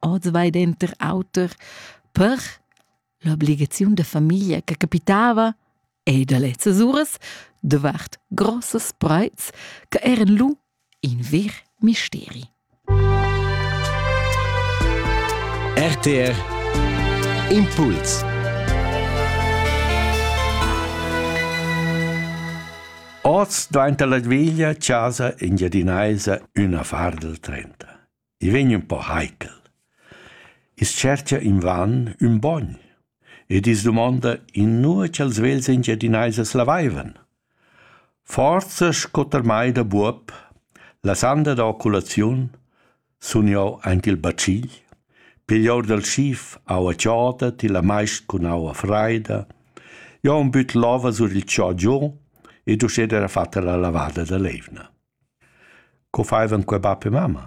oz vai denter auter per l'obligaziun da famiglia che capitava e da lezzas uras davart grossas preits che eran lu in ver misteri. RTR Impuls Oz dvainta la veglia chasa engiadinaisa üna far del trenta. I vegn ün po heikel. I's tschercha invan ün bogn ed i's dumonda inua cha'ls vegls Engiadinaisas l'avaivan. Forsa sco termai da buob, la sanda da oculaziun, sun eu aint il bacigl, pigl our dal schif aua choda, tilla maist cun aua fraida, eu am büt l'ova sur il cho giò ed uschè d'eira fatta la lavada da l'eivna. Co faivan quei bap e mamma?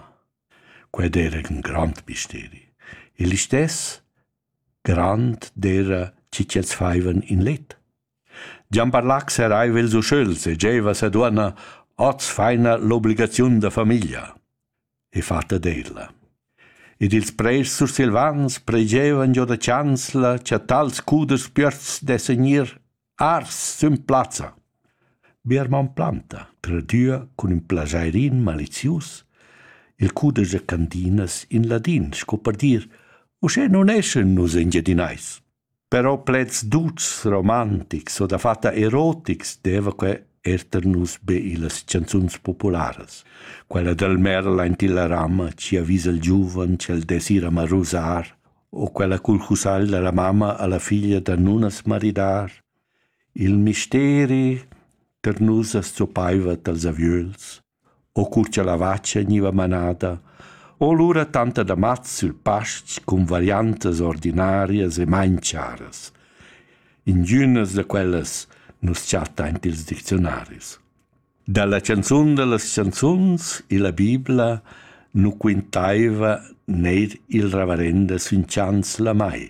Quei d'era ün grand misteri. Il listess grand d'era chi ch'els faivan in let. Gian Barlac seraiva ils uschöls e giaiva sa duonna hoz faina l'obligaziun da famiglia e fatta d'ella. Ed ils preis sursilvans pregevan giò da chanzla cha tals cuders piöts dessan gnir Ars sün plazza. Biermann planta, tradüa cun ün plajairin malizius il cudesch cantinas in ladin, sco per dir «Uschè nun eschan nus Engiadinais». Però pleds duts, romantics o dafatta erotics deva que er tar nus be illas chanzuns popularas. Quella dal Merl aint illa rama chi avisa il giuven ch'el dess ir a marusar o quella cul cussagl da la mamma alla figlia da nun as maridar. Il misteri per nus as zoppaiva dals aviöls, o cur cha la vacha gniva manada, o lura tanta da mats sül past cun variantas ordinarias e main charas. Ingünas da quellas nus chattaint i'ls dicziunaris. Dalla canzun dallas canzuns illa Bibla nu quintaiva neir il reverenda sün chans la mai.